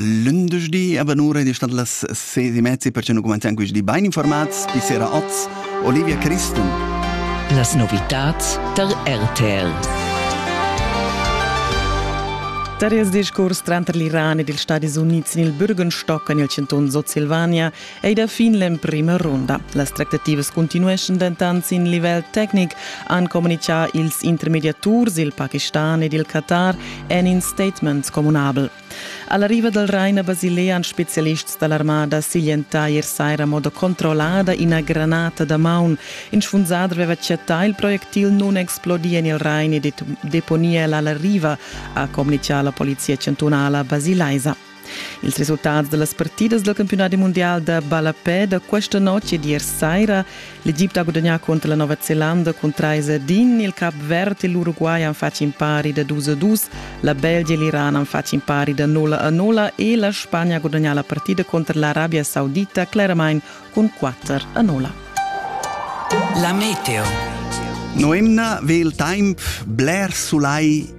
Lündeschdi a Vanura ed è stat las 16 e mezza perché nu cumanzian questi bain informats. Bis sera oz, Olivia Christen. Las novitats tar RTL. Tar ils discurs tranter l'Iran ed ils Stadis Unids sin il Bürgenstock en il chantun Sutsilvania ei da fin l'emprema runda. Las tractativas continueschan dentant sin livel tecnic, han communichà ils intermediaturs il Pakistan ed il Qatar en in statement communabel. Alla riva dal Rain a Basilea han spezialists da l'armada siglientà ier saira a moda controllada ina granata da maun. In sfunsader aveva chattà il projectil nunexplodì en il Rain e deponì el alla riva, ha communichà la polizia chantunala basilaisa. Ils resultats da las partidas dal campiunadi mundial da ballapè da questa notg ed ier saira. L'Egipte ha gudagnà contro la Nova Zelanda cun 3 a 1. Il Cap Verd e l'Uruguay han fatg in pari da 2 a 2. La Belgia e l'Iran han fatg in pari da 0 a 0 e la Spagna ha gudagnà la partida contro l'Arabia Saudita claramain cun 4 a 0. La meteo. Noemna ve il temp bler sulai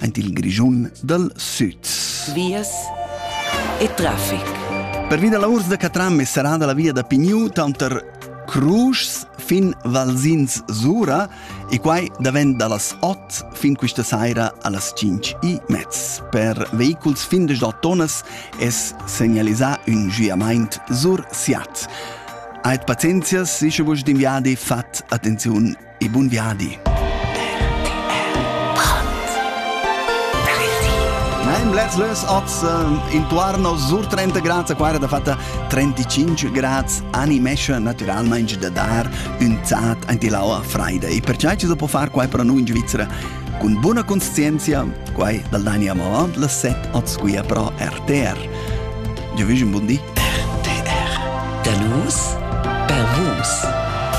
aint il Grischun dal Süd. Vias e trafic. Per via da urs da Catram è serrada la via da Pigniu tanter Cruschs fin Valsins Sura e quai davent da las 8 fin questa saira a las 5 e mezz. Per vehiculs fin de 8 tonnas es segnalisà un giamaint sur Siat. Aet pazienzias, sicher vos d'inviadi fat attenziun e bun viadi. Lez less oz eh, intuarno sur 30 grad, qua era da fatta 35 grad, animesce naturalmente da dar un zat anti l'aua freida. E perciò ci può fare qua per noi in Svizzera con buona conscienza, qua dal Daniamo Avant, la set oz qui pro RTR. Io vi un buon dì. RTR. Da nus, per vus.